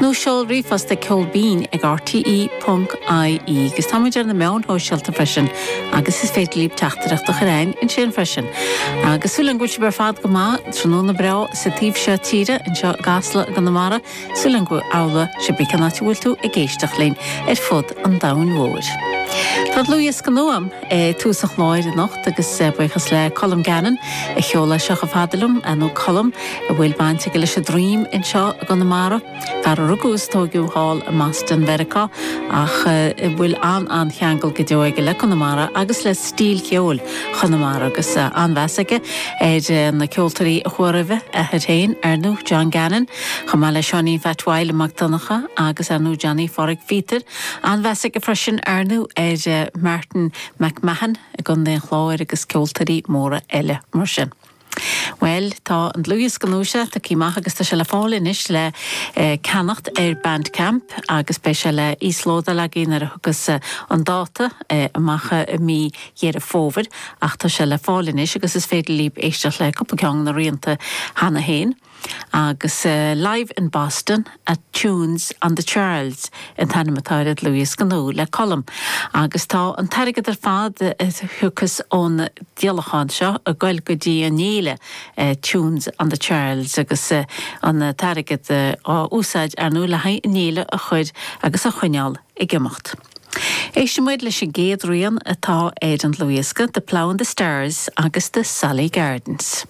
Nó seol ríomhphost chuig ceol binn ag RTÉ.ie agus táimid ar na meáin shóisialta freisin agus is féidir libh teachtaireacht a chur a'inn ansin freisin. Agus súil a'm go bhfuil sibh ar fad go maith, tráthnóna breá sa taobh seo tíre, anseo i gCasla i gConamara, súil a'm go bhfuil sibh cibé cén áit a bhfuil tú ag éisteacht linn ar fud an domhain mhóir. Tá dlúthdhiosca nua. tús an chláir anocht agus buíochas le Colm Gannon a sheol é seo chomh fada liom, nó Colm a bhfuil baint aige leis an dream anseo i gConamara, fear a rugadh is tóigeadh thall i mBoston Mheiriceá ach a bhfuil an-an-cheangal go deo aige le Conamara agus le stíl cheoil Chonamara agus an-mheas aige ar na ceoltóirí a chuaigh roimhe, athair féin ar ndú, John Gannon, chomh maith le Seáinín Pheait Mhaidhle Mac Donncha agus ar ndú Johnny Phádraig Phíotair. An-mheas aige freisin, ar ndú, ar Martin McMahon i gContae an Chláir agus ceoltóirí móra eile mar sin. Bhuel, tá an dlúthdhiosca nua seo tugtha amach agus tá sé le fáil anois le ceannacht ar Bandcamp agus beidh sé le íoslódáil ach a dtiocfaidh an dáta amach i mí Dheireadh Fómhair ach tá sé le fáil anois agus is féidir libh éisteacht le cúpla ceann de na rianta cheana féin. Agus Live in Boston at Tunes on the Charles an t-ainm atá ar an dlúthdhiosca nua le Colm. Agus tá an t-airgead ar fad a thiocfas ón díolachán seo ag goil go dtí an fhéile Tunes on the Charles agus an t-airgead á úsáid ar ndú le haghaidh an fhéile a chur agus a choinneáil ag imeacht. Éistfidh muid leis an gcéad rian atá ar an dlúthdhiosca, The Plough and the Stars agus The Sally Gardens.